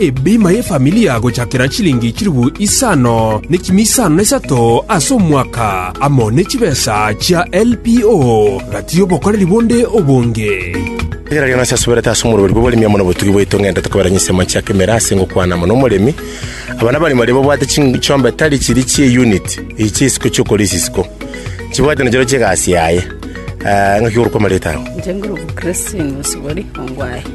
Ebima y'efamilia gochakera chilingi chilifu isano nekimi isano na isato ase omwaka, amo ne chibesa chia LPO, gati y'obokoreri bonde obonge. Rigereria nase asuberete ase omorweri bw'oboremi amo nobotugi bwaito ng'ende tokobera chinsemo chia kemera ase ngokwana amo nomoremi. Aba nabaremi baria babwate chiombe tari chiri chie unit eye chia isiko chiokora ase isiko. Chibwate nachiro chiegasi yaye. Ng'aki gorokwa amareta ao. Inche ngorokwa Christine Osubori Ongwae.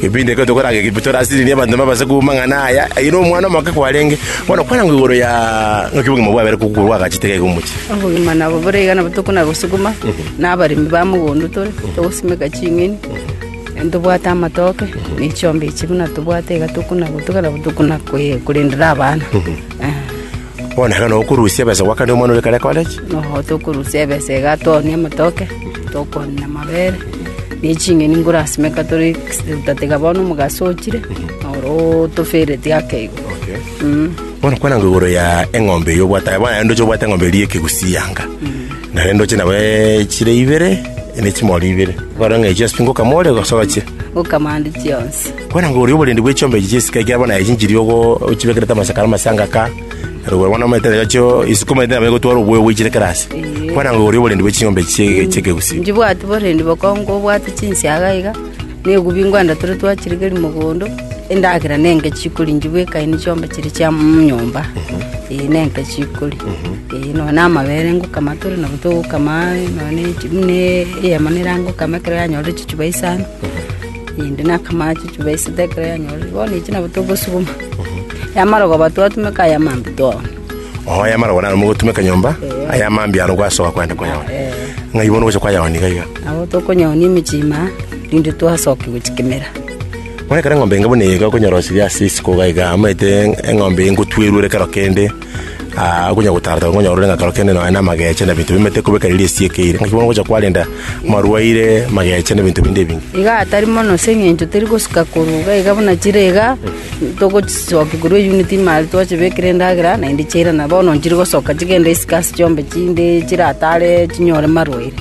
Kepindi ekio tokoranga Egipito orasiririe abanto babaase kouma amang'ana aya, aye nomwana omoke kwarenge. Bono kwarangwa igoro ya ng'aki obogima bwabere kokorwa agache taiga iga omochie. Obogima nabo bore iga nabo tokona gosuguma, na abaremi ba mogondo tore, togosimeka ching'eni, na tobwate amatoke, na echiombe echi buna tobwate iga tokona gotuga nabo tokona kwe- korendera abana. Eh. Bono ekero nokorusia ebesa goakane omwana oria ekero ekore ki? Nabo tokorusia ebesa iga toonie amatoke, tokwanera amabere, na eching'eni nkorasimeka tore getuta tiga bono omogaso ochire, noro tofereti ake igo. Mm. Bono kwana ngwa igoro ya eng'ombe eye obwate, bono naende ndoche obwate eng'ombe eria y'ekegusi yanga, naende ndoche nabo echire ibere, ne chimori ibere, ekero ng'a echio ase pi ngokamore gose oche? Ngokamande chionsi. Kwerangoria oborendi bwe chiombe echi chi'esika ekiagera bono aye chinchiri ogo ochibekerete amasaka na amasanga aka, na rogwero bono omanyete nabo chio isikomerete nabo egotwara oboyo oboichire kera aase. Kwerangoria oborendi bwe chiombe echi chie- chi'ekegusii. Nchibwati borendi bokonge obwate chinsiaga iga, na egubi ngwenda tore twachirigeria mogondo, endagera nenke chikori nchibwa ekaini chiombe chiri chia mm, nyomba, eh, nenke chikori. Eh, nonya na amabere ngokama tore nabo togokama, nonya na echi- buna eyemo nere angokama ekero yanyorire chichuba isano. Naende nakamanya chichu ba isiko ekero yanyorire, bono echi nabo togosuguma. Yamara koba twatumeka aya mambia twaona. Oo aya amarogo naro mogotumeka nyomba Eh. aya amambia aro gwasoa kwenda koyaona Eh. ng'ai bono gocha kwayaona iga iga Nabo tokonyonia emechie ime, rinde twasokia gochia kemera. bono ekero eng'ombe enga buna iga okonyorosirie ase isiko iga iga amaete eng'ombe eye ngotwerure kero kende Aa, okonya gotaarata ngonya orore ng'a kero kende nonya namageche na binto bimete kobeka riria esieka eire, naki bono ngocha kwarenda marwaire, mageche na binto binde ebinge. Iga atari mono ase eng'encho teri gosuka korwa iga iga buna chire iga, togochisokia korwa eyunit ime aria twachibekire endagera, naende chiairana bono nchire gosoka chigende isiko ase chiombe chinde chiratare chinyore marwaire.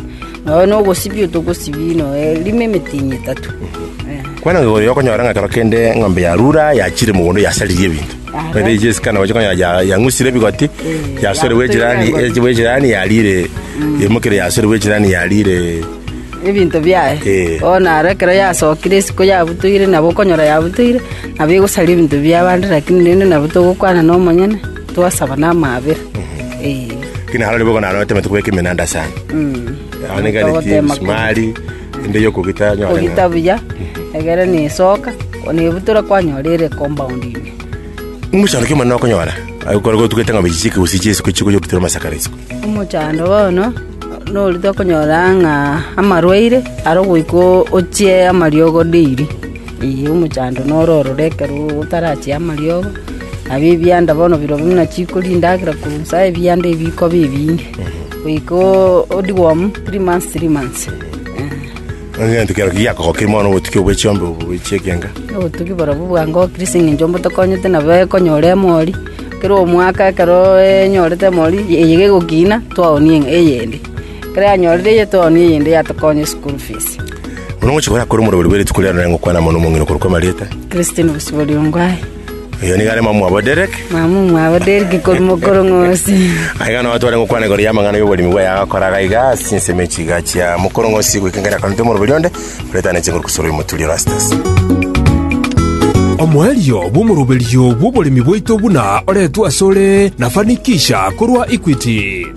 Nonya na ogosibia togosibia nonya rimo emetinyi etato. Eh. Kwena ng'a oyo okonyora ng'a kero kende eng'ombe yarura, yachire mogondo yasaririe ebinto. Ere echi esikana gocha konya ya- yang'usire ebigoti yasorerwa echirani echibwa echirani yarire yemokire yasorerwa echirani yarire ebinto biaye Eh. bono naro ekero yasokire isiko yabutoire nabo okonyora yabutoire nabo egosaria ebinto bia abande lakini rende nabo togokwana na omonyene twasaba na amaabera Eh, kina harori bogo naro otemete kobeka emenanda sana mm. Aoneka ni Togotema msumari Inde y'okogita yanyora ng'a Kogita buya, egere nesoka, nebutora kwanyora ere compound ime. omochando kio omonene okonyora, agokora gotugete ng'a bechiche ekegusii chia isiko chikonya okitera amasaka ara isiko. Omochando bono nori tokonyora ng'a amarwaire are ogoika o- ochie amariogo daily. Ee, omochando noro ororo ekero otarachie amariogo, nabio ebianda bono birobio buna chikori, endagera korwa nsa, ebianda ebikoba ebinge. Goika odigwe omu, three months, three months. Egento kero ki giakogokire mono obotuki obwe chiombe obo bwe chiekenga? Obotugi borobwo bwangokire ase eng'encho mbotokonyete nabo ekonyora emori. Kera omwaka ekero enyorete emori, eye gegokina, twaoonia eng'a- eyende. Ekero yanyorire eye twaoonia eyende yatokonya eschool fees. Buna ogochia korakore omorweri bwe rituko riane, nare ngokwana mono omong'ina okorokwa amarieta. Christine Bosibori Ongwae. Oyo nigo are mama wabo Derek. Mama mwabo Derek kori mokoro ng'osi. Aiga no tware gokwana igoro ya amang'ana y'oborimi bwaye agakoraga iga ase ensemo echiga chia mokoro ng'osi goika ngere akanete omoroberi onde oretane chinguru kusoro y'omoturi Erastus. Omoerio bw'omoroberio bw'oboremi bwaito buna oretwe asore na Fanikisha korwa Equity.